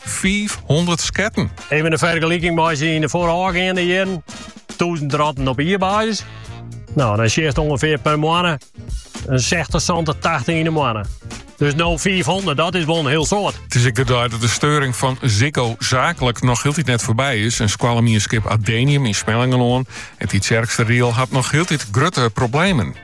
500 sketten. Even in fergeliking mei syn foarôfgeande jierren. 1000 ratten op jierbasis. Nou, dan sjeest ongeveer per moanne een 60, 70, 80 in de moanne. Dus no 500, dat is wol in hiel soad. Het is ik de dei dat de steuring van Ziggo zakelijk nog heeltyd net voorbij is. En skoallemienskip Adenium yn Smellingerlân en Tytsjerksteradiel hat nog heeltyd grutte problemen.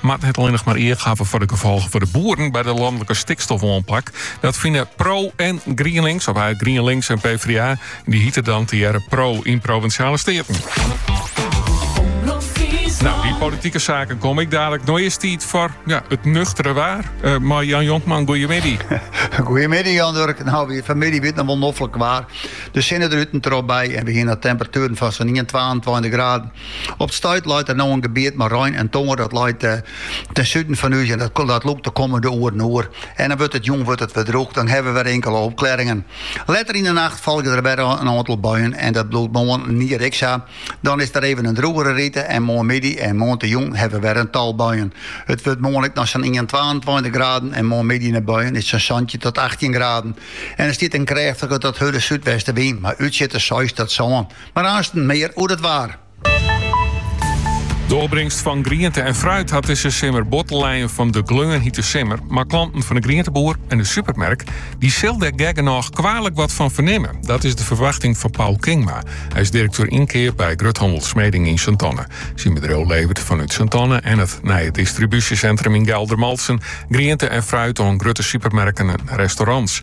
moat net allinnich mar each hawwe foar de gefolgen foar de boeren by de lanlike stikstofoanpak. Dat fine Pro en GrienLinks, of eigenlijk GrienLinks en PvdA, die hieten dan tegearre Pro yn Provinsjale Steaten. Nou, die politieke zaken kom ik dadelijk. No is it tiid foar ja, it nuchtere waar. Uh, mei Jan Jonkman, goeiemiddei. goeiemiddei Jan Durk. Nou, weer vanmiddag wie it noch wol noflik waar. De zinnen er een erop bij en we gaan naar temperaturen van zo'n 22 graden. Op 't stuit leit der no in gebiet mei rein en tonger, dat leit ten suden fan ús en dat lûkt de kommende oeren oer. En dan wurdt it jûn wurdt it wer drûch, dan hawwe we wer inkele opklearringen. Letter yn 'e nacht folgje der wer in oantal buien en dat bliuwt moarnier ek sa. Dan is der even in drûgere rite en moarnmiddei en moarntejûn hawwe we wer in tal buien. It wurdt moarn ek noch sa'n ien-, twaentweintich graden en moarnmiddei nei buien is it sa'n santjin tot achttjin graden. En der stiet in krêftige tot hurde súdwestenwyn mei útsjitters seis tot sân Mar aansten mear oer it waar. De opbringst fan griente en fruit hat dizze simmer bot te lijen fan de gleunhite simmer. Mar klanten fan de grienteboer en de supermerk die sil der gek genôch kwealik wat fan fernimme. Dat is de ferwachting fan Paul Kingma. Hy is direkteur ynkeap by gruthannel Smeding yn Sint-Anne. Syn bedriuw leveret fanút Sint-Anne en it nije distribúsjesintrum yn Geldermalsen griente en fruit oan grutte supermerken en restaurants.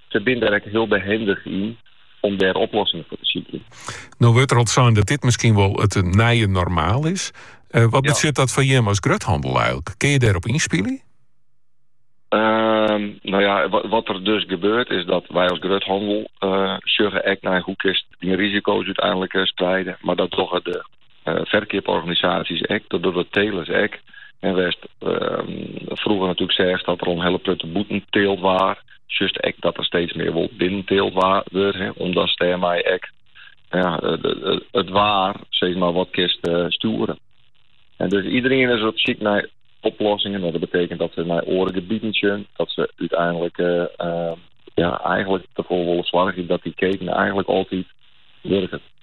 se binne der ek hiel behendich yn om dêr oplossingen foar te sykjen. No wurdt der al sein dat dit miskien wol it nije normaal is. Eh, wat betsjut dat foar jim as gruthandel eigenlijk? Kin je dêrop ynspylje? Ehm, nou ja, wat er dus gebeurt is dat wij als gruthandel uh, eh, sjogge echt nei hoe kinst die risico's uiteindelijk eh, spreiden. Maar dat dogge de ferkeaporganisaasjes ek, dat dogge de telers ek. En wêr'tst frûger natuerlik seachst dat der al in hiele protte bûten teald waard, sjochst ek dat der steeds mear wol binnen teald wurdt, omdatst dêrmei ek it waar steeds mear wat kinst stjoere. Dus iedereen is op syk nei oplossingen. Dat betekent dat se nei oare gebieten sjen, dat se úteinlik eigenlik derfoar wolle soargje dat dy keten eigenlik altyd wurket.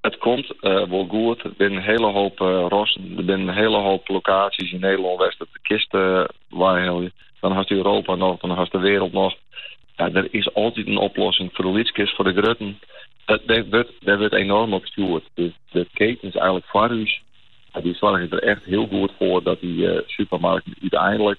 It komt wol goed. Der binne in hiele hoop rassen. Der binne in hiele hoop lokaasjes yn Nederlân wêr'tst it kinst weihelje. Dan hast Europa noch, dan hast de wêreld noch. Ja, der is altyd in oplossing, foar de lytskes, foar de grutten. Dêr wurdt enorm op stjoerd. De ketens eigenlik foar ús, dy soargje der echt hiel goed foar dat dy supermarkten úteinlik,